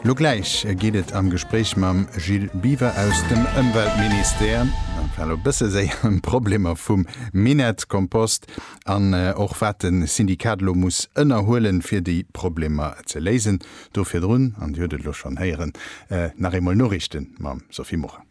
Lo gläich geet et am Gespréich mam Gilles Biwer aus dem Ëmweltministère, dat war elo e bësse séier, ëm d'Problemer vum Minettkompost an och wat de Syndikat elo muss ënnerhuelen, fir déi Problemer ze léisen. Do virdrun, an Dir hutt et elo schonn héieren, nach eemol Noriichte mam Sophie Morang.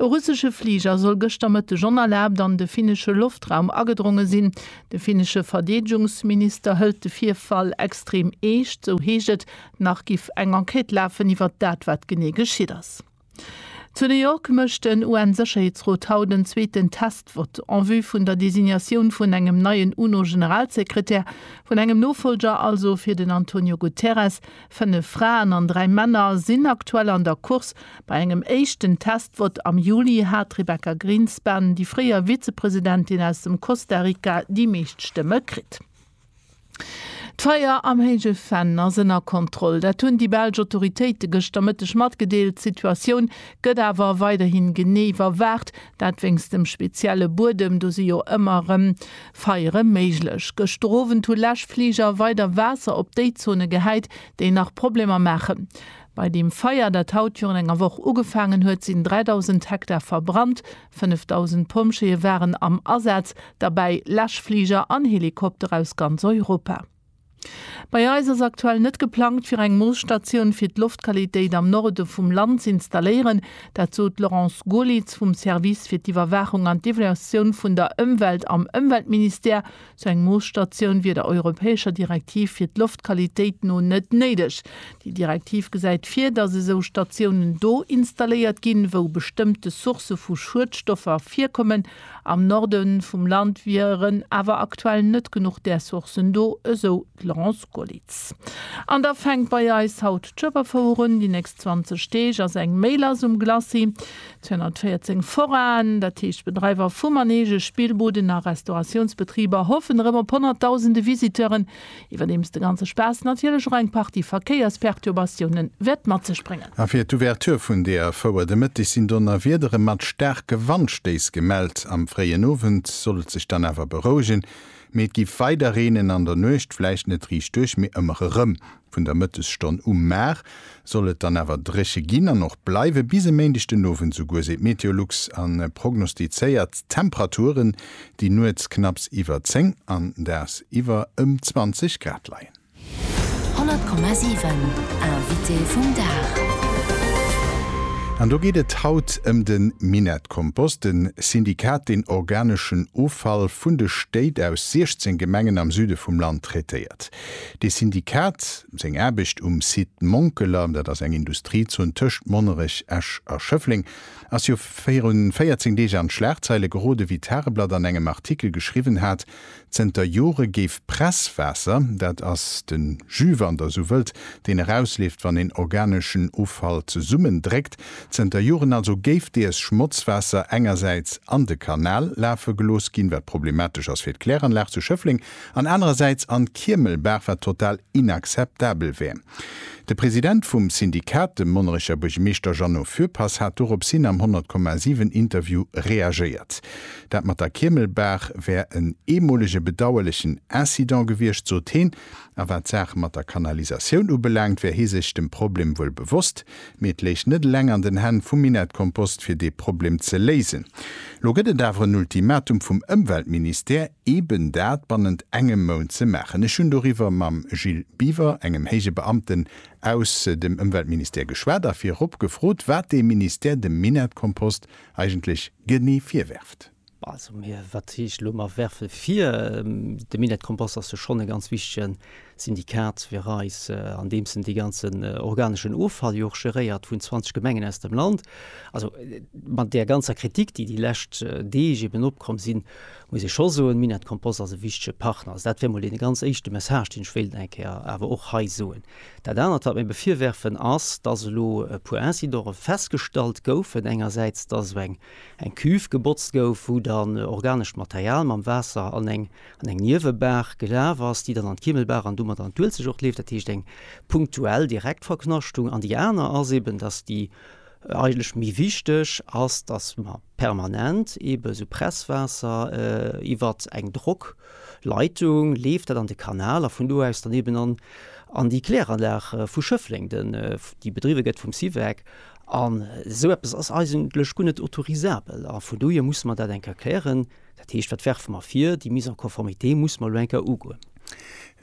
E russesche Fliger soll gëschter Mëtteg onerlaabt an de finnesche Loftraum agedronge sinn. De finnesche Verdeedegungsminister hëlt de Virfall extrem eescht, sou heescht et. Nach giff eng Enquête lafen iwwer dat, wat genee geschitt ass. Zu New York mécht den UN-Sécherheetsrot haut en zweeten Test-Vott en vue vun der Designatioun vun engem neien UNO-Generalsekretär, vun engem Nofollger also fir den Antonio Guterres. Fënnef Fraen an dräi Männer sinn aktuell an der Course. Bei engem éischten Testvott am Juli hat d'Rebecca Grynspan, déi fréier Vizepresidentin aus dem Costa Rica, déi meescht Stëmme kritt. D'Feier am Héije Venn ass ënner Kontroll. Dat hunn déi belsch Autoritéite gëschter Mëtteg matgedeelt. D'Situatioun gëtt awer weiderhi genee iwwerwaacht, dat wéinst dem spezielle Buedem. Do si jo ëmmer erëm Feiere méiglech. Gëschter Owend hu Läschfliger weider Waasser op déi Zone gehäit, déi nach Problemer maachen. Bei deem Feier, dat haut virun enger Woch ugefaangen huet, sinn 3.000 Hektar verbrannt. 5.000 Pompjeeë waren am Asaz, derbäi Läschfliger an Helikopter aus ganz Europa. Bei eis ass aktuell net geplangt, fir eng Moosstatioun fir d'Loftqualitéit am Norde vum Land z'installéieren. Dat sot d'Laurence Goerlitz vum Service fir d'Iwwerwaachung an d'Evaluatioun vun der Ëmwelt am Ëmweltministère. Sou eng Moosstatioun wier der europäescher Direktiv fir d'Loftqualitéit no net néideg. Déi Direktiv gesäit vir, datt esou Statiounen do installéiert ginn, wou bestëmmte Sourcë vu Schuedstoffer virkommen, Am Norde vum Land wieren awer aktuell net genuch där Sourcen do, esou d'Laurence Gollitz. An da fänkt bei eis haut d'Schueberfouer un, déi nächst 20 Deeg ass eng méi lass um Glacis. 214 Foraen, dat heescht Bedreiwer vu Manegen, Spillbuden a Restauratiounsbetriber hoffen erëm op Honnertdausende Visiteuren, Iwwerdeems de ganze Spaass natierlech och eng Partie Verkéiersperturbatioune wäert mat sech bréngen. A fir d'Ouverture vun deeër Fouer de Mëtteg sinn Donnerwiedere mat staarke Wandstéiss gemellt. Am fréien Owend soll et sech dann awer berouegen, mee et géif weider reenen, an der Nuecht vläicht net riichtduerch, mee ëmmer erëm. Vun der Mëttesstonn u mar Soll et dann awer dréche ginn an och bleiwe bis e Méindeg den Owend esouguer, seet Meteolux a prognostizéiert Temperaturen, déi nuets knapps iwwer 10 an daags iwwer ëm 20 Grad leien. 100,7 Invité vum Dag. An do geet et haut ëm de Minett-Kompost, e Syndikat, deen organeschen Offall vun de Stéit aus 16 Gemengen am Süde vum Land traitéiert. De Syndikat seng Aarbecht um Site Monkeler, dat ass eng Industriezon tëscht Monnerech, Esch a Schëffleng, ass jo viru 14 Deeg an d'Schlagzeile gerode wéi d'Tageblatt an engem Artikel geschriwwen hat, zënter Jore géif Presswaasser, dat ass de Jus wann der esou wëllt, deen erausleeft wann een organeschen Offall zesummendréckt, zënter Joren also géif dees Schmotzwaasser engersäits an de Kanal lafe gelooss ginn, wat problematesch ass fir d'Kläranlag zu Schëffleng an anerersäits an d'Kiemelbaach, wat total inakzeptabel wär. De President vum Syndikat, de Monnerecher Buergermeeschter Jeannot Fürpass, hat doropshin am 100,7 Interview reagéiert. Dat mat der Kiemelbaach wär en eemolege bedauerlechen Incident gewiescht, sot heen. A wat d'Saach mat der Kanalisatioun ubelaangt, wär hie sech dem Problem wuel bewosst, mee et léich net eleng an den Hänn vum Minett Kompost, fir dee Problem ze léisen. Lo gëtt et awer en Ultimatum vum Ëmweltministère. eeben dat bannent engem Mount ze maachen. Ech hunn doriwwer mam Gilles Biver, engem héije Beamten aus dem Ëmweltministère geschwat a virop gefrot, wat dee Ministère dem Minettkompost eigentlech genee virwerft. Also, wat heescht elo, mer werfe vir? De Minettkompost ass jo schonn e ganz wichtegen Syndikat fir eis, andeems en dee ganzen organeschen Offall jo och geréiert vun 20 Gemengen aus dem Land. Also mat där ganzer Kritik, déi déi lescht Deeg eben opkomm sinn, muss ee scho soen, Minett Kompost ass e wichtege Partner. Also dat wär mol dee ganz éischte Message, deen ech wéilt eng Kéier awer och hei soen. Dat anert, wat mir ebe virwerfen, ass, dass elo e puer Incidere festgestallt goufen. Engersäits, dass elo eng Cuve gebotzt gouf, wou dann organescht Material mam Waasser an eng an eng Niewebaach gelaf ass, déi dann an d'Kiemelbaach an domat an d'Uelzecht och leeft, dat heescht eng punktuell direkt Verknaschtung. An déi aner ass eben, dass déi eigentlech méi wichteg ass, dass mer permanent eben esou Presswaasser iwwer eng Drockleitung leeft, dat an de Kanal a vun do aus dann eben an déi Kläranlag vu Schëffleng, déi bedriwwe gëtt vum Syvec. An esou eppes ass eigentlech guer net autorisabel a vun dohier musse mer dat enker klären. Dat heescht, wat werfe mer vir? Déi Mise en conformité musse mer elo eng Kéier ugoen.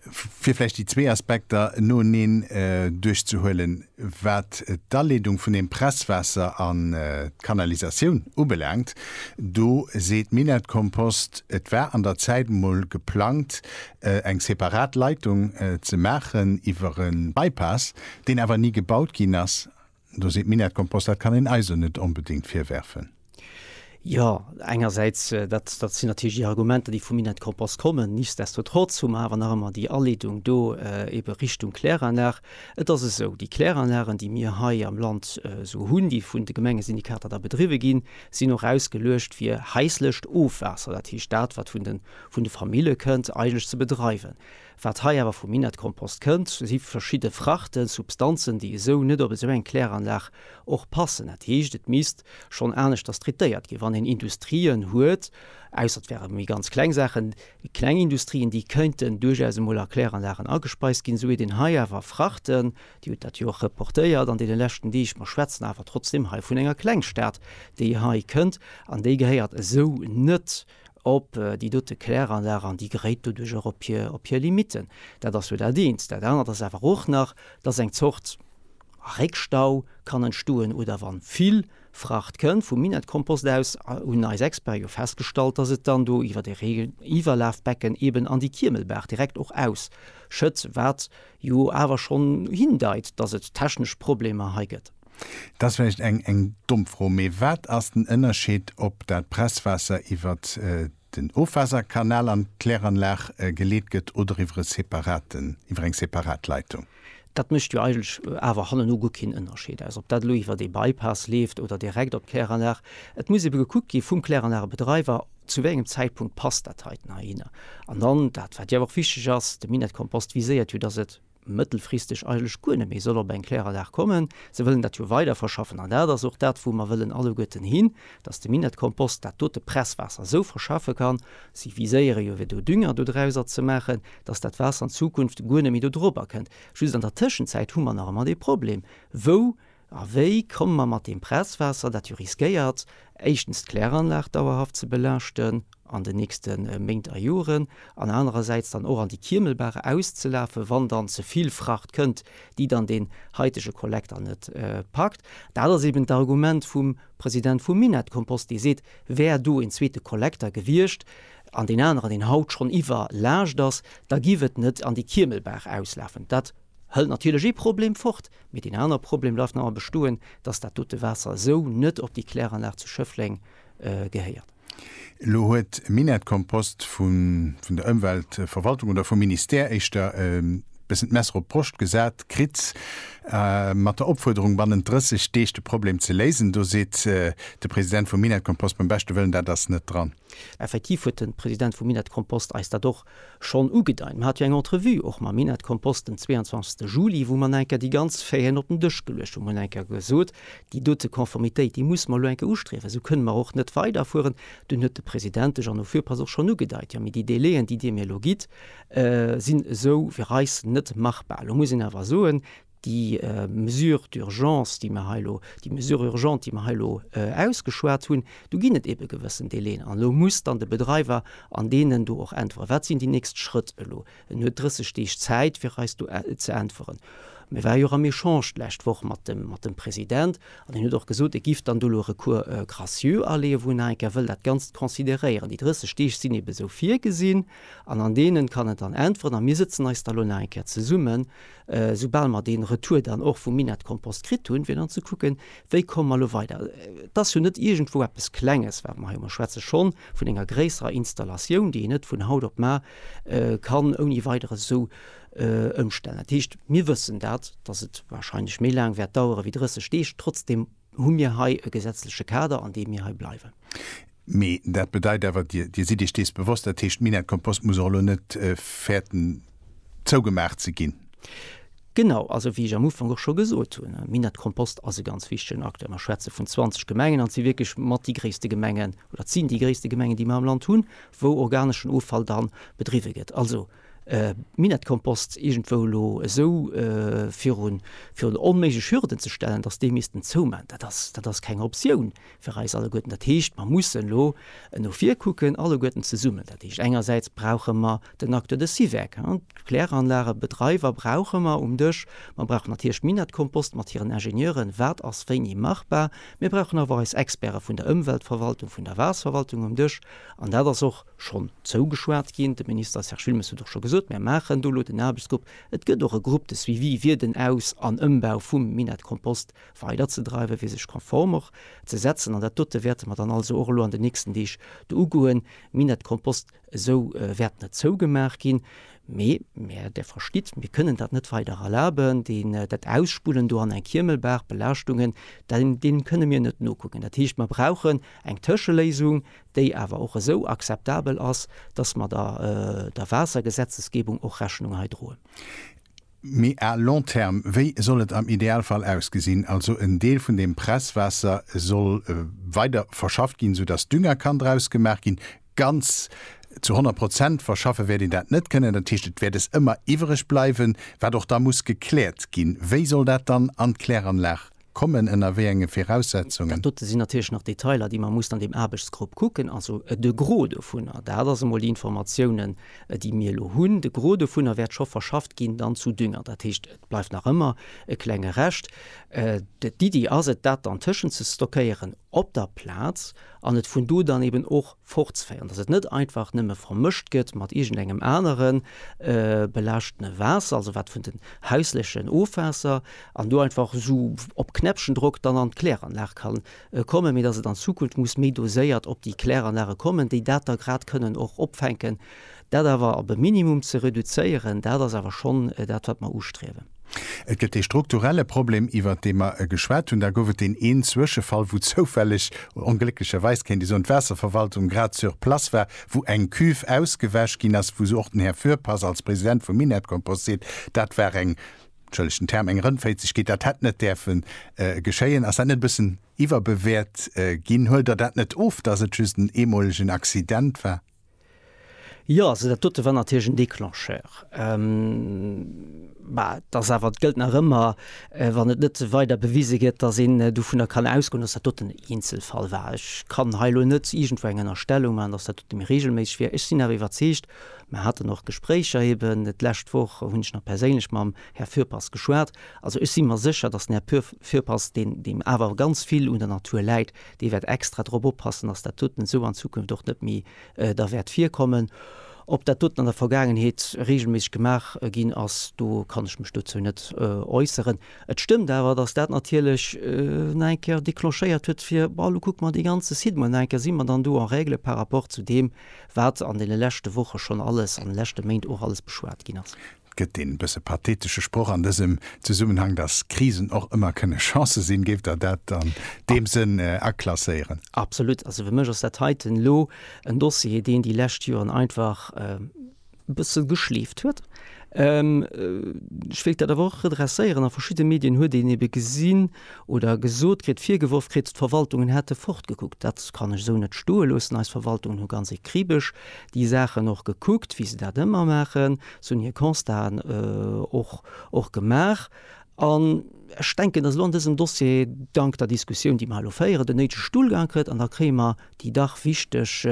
Fir vläicht déi zwee Aspekter noeneen duerchzehuelen, Wat d'Aleedung vun dem Presswaasser an d'Kanalisatioun ubelaangt, do seet Minett-Kompost, et war an der Zäit emol geplangt, eng separat Leitung ze maachen iwwer e Bypass, deen awer ni gebaut ginn ass. Do seet Minetcompost, dat kann een eis o net onbedéngt virwerfen. Jo, engersäits, dat sinn natierlech déi Argumenter, déi vum Minetcompost kommen. Nichtsdestotrotz hu mer awer nach ëmmer déi Aleedung do ebe Richtung Kläranlag. Et ass esou, déi Kläranlagen, déi mir hei am Land esou hunn, déi vun de Gemengesyndikater da bedriwwe ginn, sinn och ausgeluecht fir haislecht Ofwaasser, dat heescht dat, wat vun de Famille kënnt, eigentlech ze bedreiwen. Wat hei awer vum Inertkompost kënnt, si verschidde Frachten, Substanzen, déi esou net op esou eng Kläranlag och passen. Dat heescht, et misst schonn aneschters traitéiert ginn. Wann een Industrien huet, ausser et wäre méi ganz kleng Saachen, kleng Industrien, déi kéinten duerchaus emol a Kläranlagen agespeist ginn, esou huet een hei awer Frachten, Dir hutt dat jo och reportéiert an deene leschten Deeg, mer schwätzen awer trotzdeem hei vun enger Klengstad, déi hei kënnt, an déi gehéiert esou net op déi dote Kläranlag an déi geréit doduerch och op hir Limitten. Dat ass jo dat eent. Dat anert ass awer och nach, dass eng Zort Réckstau kann entstoen oder wa vill Fracht kënnt vum Minettkompost aus, hunn eis Experte jo festgestallt, dass et dann do iwwer e Reegiwwerlafbecken eeben an déi Kiemelbaach direkt och ausschëtt, wat jo awer schonn hindeit, dass et technesch Problemer hei gëtt. Dat ass vläicht eng, eng domm Fro, mee wat ass den Ënnerscheed, ob dat Presswaasser iwwert den Ofwaasserkanal an d'Kläranlag geleet gëtt oder iwwer e separaten, iwwer eng separat Leitung? Dat mécht jo eigentlech awer hannenu guer keen Ënnerscheed aus, ob dat elo iwwer ee Bypass leeft oder direkt op d'Kläranlag. Et muss ebe gekuckt gi vum Kläranlagebedreiwer, zu wéi engem Zäitpunkt passt dat heiten heihinner. An dann dat, wat jo awer och wichteg ass, de Minettekompost viséiert jo, dass et, mëttelfristeg eigentlech guer net méi soll op eng Kläranlag kommen. Se wëllen dat jo weider verschaffen an dat ass och dat, wou mer wëllen alleguerten hin, dass de Minettkompost dat dote Presswaasser esou verschaffe kann, si viséiere jo ewéi do Dünger do drauser ze maachen, dass dat Waasser an Zukunft guer net méi do drop erkënnt. Just an der Tëschenzäit hu mer nach ëmmer dee Problem, wou A wéi komme mer mat deem Presswaasser, dat jo riskéiert, éischtens d'Kläranlag dauerhaft ze belaaschten an den nächste Méint a Joren, an anerersäits dann och an déi Kiemelbaach auszelafen, wann dann ze vill Fracht kënnt, déi dann deen haitege Kollekter net packt? Dat ass eben d'Argument vum President vum Minett-Kompost, dee seet, wär do een zweete Kollekter gewiescht an deen aneren, deen haut schonn iwwerlaascht ass, da giff et net an déi Kiemelbaach auslafen. Dat Hëlt natierlech ee Problem fort, mee deen aner Problem bleift nach ëmmer bestoen, dass dat dote Waasser esou net op déi Kläranlag zu Schëffleng gehéiert. Elo huet Minett Kompost vun vun der Ëmweltverwaltung oder vum Ministère éischter e bëssen d'Messer op d'Broscht gesat kritt, mat der Opfuerderung bannent 30 Deeg de Problem ze léisen. Do seet de President vu Minett Kompost, beim beschte Wëllen, dat ass net dran. Effektiv huet de President vu Minett Kompost eis dat och Schonn ugedeit, mer hat jo eng Entrevue och mam Minett Kompost den 22 Juli, wou mer enker déi ganz Faiten op den Dësch geluecht hunn. Mer hunn enker gesot, déi dote Konformitéit, déi musse mer elo enker ustriewen, esou kënne mer och net weiderfueren. Dunn huet de President, de Jeannot Fürpass, och schonn ugedeit, Jo, mee déi Délaiën, déi Dir mir elo gitt, sinn esou fir eis net machbar. Elo muss een awer soen, Déi Mesure d'urgence, déi mer hei elo, déi Mesure urgente, déi mer hei elo ausgeschwat hunn, do ginn et eebe gewëssen Délaiën. An elo muss dann de Bedreiwer an deenen do och äntweren. Wat sinn déi nächst Schrëtt elo? En huet 30 Deeg Zäit, fir eis do ze äntweren. Mir ware jo och am Echange d'lescht Woch mat dem, mat dem President. An hien huet och gesot, e giff dann do elo e Recours gracieux aleeën, wou en nach eng Kéier wëll dat Ganzt consideréieren. Déi 30 Deeg sinn eebe esou virgesinn an an deenen kann en dann äntweren. A mir sëtzen eis da elo nach eng Kéier zesummen, Soubal mer dee Retour dann och vum Minettkompost kritt hunn, fir dann ze kucken, wéi komme mer elo weider. Et ass jo net iergendwou eppes Klenges, wat mer hei. Mer schwätze schonn vun enger gréisserer Installatioun, déi een net vun haut op mar kann ouni Weideres esou ëmstellen. Dat heescht, mir wëssen dat, dass et warscheinlech méi laang wäert dauere wéi 30 Deeg. Trotzdem Hu mir hei e gesetzleche Kader, an deem mir hei bleiwen? Mee dat bedeit awer, Dir, Dir sidd Iech dees bewosst, dat heescht, d'Minette Compost muss och elo net fäerten, zougemaach ze ginn. Genau, also wéi ech am Ufank och scho gesot hunn, Minette Compost ass e ganz wichtigen Acteur. Mer schwätze vun 20 Gemengen, an et si wierklech mat déi gréisste Gemengen, oder et sinn déi gréisste Gemengen, déi mer am Land hunn, wou organeschen Offall da bedriwwe gëtt. Also Minettkompost iergendwou elo esou virun onméiglech Hürden ze stellen, datt déi missten zoumaachen, dat ass, dat ass keng Optioun fir eis alleguerten. Dat heescht, mer mussen elo no vir kucken, alleguerten zesummen. Dat heescht, engersäits brauche mer den Acteur de Syvec, d'Kläranlagebedreiwer brauche mer um Dësch, mer brauchen natierlech Minettkompost mat hiren Ingenieuren, wat ass wéini machbar. Mir brauchen awer och eis Experte vun der Ëmweltverwaltung, vun der Waasserwaltung um Dësch an dat ass och, Schonn zougeschwat ginn. De Minister Serge Wilmes huet och scho gesot, Mir maachen do elo den Aarbechtsgrupp. Et gëtt och e Grupp de suivi fir den Aus an Ëmbau vum Minett Kompost weiderzedreiwen, fir sech konform och ze setzen. An dat dote wäerte mer dann also och elo an den nächsten Deeg do ugoen. Minett Kompost esou wäert net zougemaach ginn, mee mir, Der verstitt, mir kënnen dat net weider erlaben. Deen, dat Ausspullen do an eng Kiemelbaach, d'Belaaschtungen, deem kënne mir net nokucken. Dat heescht, mer brauchen eng Tëscheléisung, déi awer och esou akzeptabel ass, dass mer der der Waassergesetzesgebung och Rechnung hei droen. Mee à long terme, wéi soll et am Idealfall ausgesinn? Also en Deel vun deem Presswaasser soll weider verschafft ginn, soudass Dünger kann draus gemaach ginn. Ganz zu 100 Prozent verschaffe wäert een dat net kënnen. Dat heescht, et wäert es ëmmer iwwreg bleiwen, wat och da muss gekläert ginn. Wéi soll dat dann an d'Kläranlag kommen, ënner wéi enge Viraussetzungen? Dat dote sinn natierlech nach Detailer, déi mer mussen an deem Aarbechtsgrupp kucken. Also de Gros dovunner, dat ass emol déi Informatiounen, déi mir elo hunn, de Gros dovunner wäert scho verschafft ginn dann zu Dünger. Dat heescht, et bleift nach ëmmer e klenge Rescht. D'Iddi ass et, dat dann tëschenzestockeieren op der Plaz an et vun do dann eben och, fortzeféieren, dass et net einfach nëmme vermëscht gëtt mat iergendengem anere belaaschtene Waasser, also wat vun den hauslechen Ofwaasser, an do einfach esou op Knäppchendrock dann an d'Kläranlag ka kommen, mee dass et an Zukunft muss méi doséiert op déi Kläranlage kommen, déi dat da grad kënnen och opfänken. Dat awer op e Minimum ze reduzéieren, dat ass awer schonn dat, wat mer ustriewen. Et gëtt dee strukturelle Problem, iwwert dee mer geschwat hunn. Da gouf et deen een Zwëschefall, wou zoufälleg, onglécklecherweis kéint ee soen, d'Waasserverwaltung grad sur place war, wou eng Cuve ausgewäsch ginn ass, wou se och den Här Fürpass als President vum Minertcompost seet, dat war eng, entschëllegt den Term, eng Rëndféitzegkeet, dat hätt net däerfe geschéien. Ass dat net e bëssen iwwerbewäert ginn? Huelt Der dat net of, datt et just en eemolegen Accident war? Jo, also dat dote war natierlech en Déclencheur. Mä et ass awer, et gëllt nach ëmmer, wann et net weider bewise gëtt, dass een dovunner kann ausgoen, dass dat doten en Eenzelfall war. Ech kann hei elo net iergendwou eng Ënnerstellung maachen, dass dat dote méi reegelméisseg wier. Ech sinn awer iwwerzeegt, mer haten och Gespréicher, eben d'lescht Woch hunn ech nach perséinlech mam Här Fürpass geschwat, also ech si mer sécher, dass den Här Fürpass, deen awer ganz vill un der Natur läit, Dee wäert extra drop oppassen, dass dat doten esou an Zukunft och net méi da wäert virkommen. Ob dat doten an der Vergaangenheet reegelméisseg gemaach ginn ass, do kann ech mech dozou net äusseren. Et stëmmt awer, dass dat natierlech nach eng Kéier declenchéiert huet, fir, Bon, elo kucke mer dee ganze Site mol nach eng Kéier, si mer dann do en règle par rapport zu deem, wat an deene leschte Woche schonn alles, an de leschte Méint och alles beschwat ginn ass? Et gëtt dee bësse pathetesche Sproch an dësem Zesummenhang, dass Krisen och ëmmer kënne Chancë sinn. Géift Der dat an deem Sënn aklasséieren? Absolut. Also fir mech ass dat heiten elo en Dossier, deen déi lescht Joren einfach e bësse geschleeft huet. Ech wéilt dat awer och redresséieren, a verschidde Medien huet een ebe gesinn, oder gesot kritt, virgeworf kritt, d'Verwaltungen hätte fortgekuckt. Dat kann ech esou net stoe loossen. Eis Verwaltungen hu ganz ekribesch déi Saachen och gekuckt, wéi se dat ëmmer maachen. Se hunn hir Constaten och och gemaach. An ech denken, datt elo an dësem Dossier, dank der Diskussioun, déi mer hei elo féieren, den néidege Stullgang kritt. An da kréie mer déi dach wichteg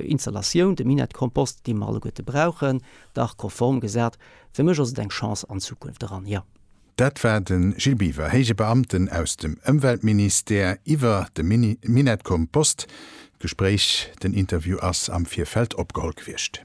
Installatioun, de Minettekompost, dee mer alleguerte brauchen, dach konform gesat. Fir mech ass et eng Chance an d'Zukunft eran, jo. Dat war de Gilles Biver, héije Beamten aus dem Ëmweltministère, iwwer de Minett-Kompost. D'Gespréich, den Interview ass am Virfeld opgeholl gewiescht.